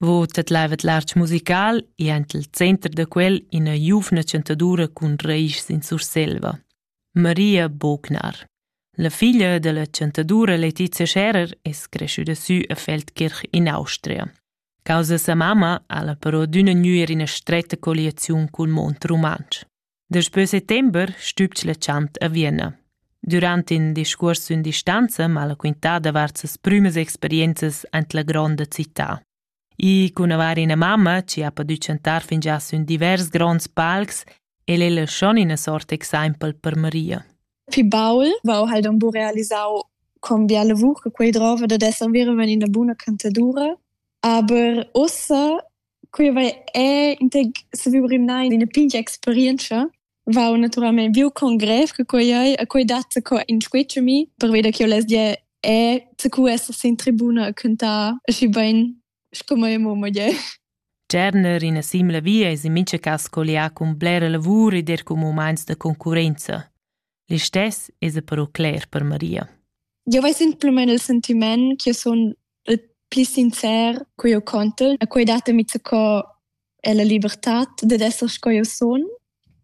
Vo tedlaivet l'artg musical e aint il center da quel ina giuvna chantadura cun raischs in Surselva, Maria Bognar. La figlia della chantadura Letizia Scherer es creschüda sü a Feldkirch in Austria. Causa sa mamma ha la però d'üna gnüer ina stretta colliaziun cul mond rumantsch. Daspö settember stübg la chant a Vienna. Durant in discuors sün distanza m'ha la quintà davart ses prümas experienzas aint la gronda città. I cun avair ina mamma chi ha podü chantar fingià sün divers gronds palcs el ella schon ina sort exaimpel per Maria. Fi baul vau halt am bu realisau con biala vuch che quei drova da esser veramen ina buna cantadura, aber ussa Quei va è saviu rimnai d'ina pigna experientscha. Va naturalmein viu con grev che quei ei, a quei dat co inscuetsch a mi, perveda che io less dir è cu essas in tribuna a cuntar aschi bein sco mai mo moglier. Tschernер ina simla via es in mincha cas collià cun blera lavur ed er cun mumaints da concurrenza. Listess esa però cler per Maria. Eu ves simplamaing il sentiment ch'io sun il pli sincer co eu contel e quai datami co è la libertad dad esser sco eu sun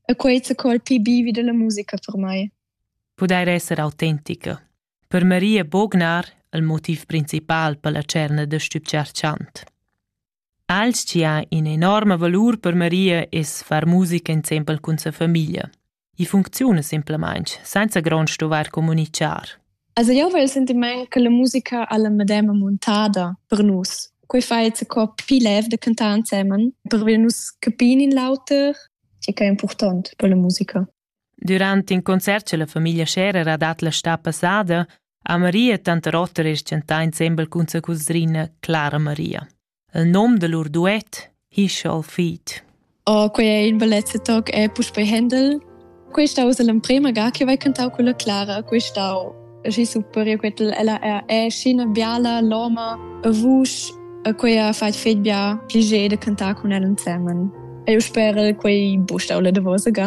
e quai co il pli bivi della musica per mai. Pudair esser autentica. Per Maria Bognar il motiv principal per la cerna da stübchar chant. Alch chi ha ün'enorma valur per Maria es far musica insempel cun sa famiglia. I funcziuna simplamain senza grond stuvair communitgar. Also io vel sentiment che la musica alla medema montada per nus. Quei fa jetzt co pi lev de cantar insemen per wir nus capin in l'auter, che è important per la musica. Durant in concert che la famiglia Scherer ha dat la sta passada, ha Maria tanta rotter e tschentà insembel cun sa cusrina Clara Maria. Il nom da lur duet Hischal Feet. Oh, quei è in bellezza toc è puspei Händel. Questa usa l'emprema ga che vai cantau con la Clara, questau aschi super, io quetel ella è, è scena biala, loma, a vusch, a quei ha fat fet bia piacere de cantar con ella insieme. E io spero quei bustau la de vosa ga.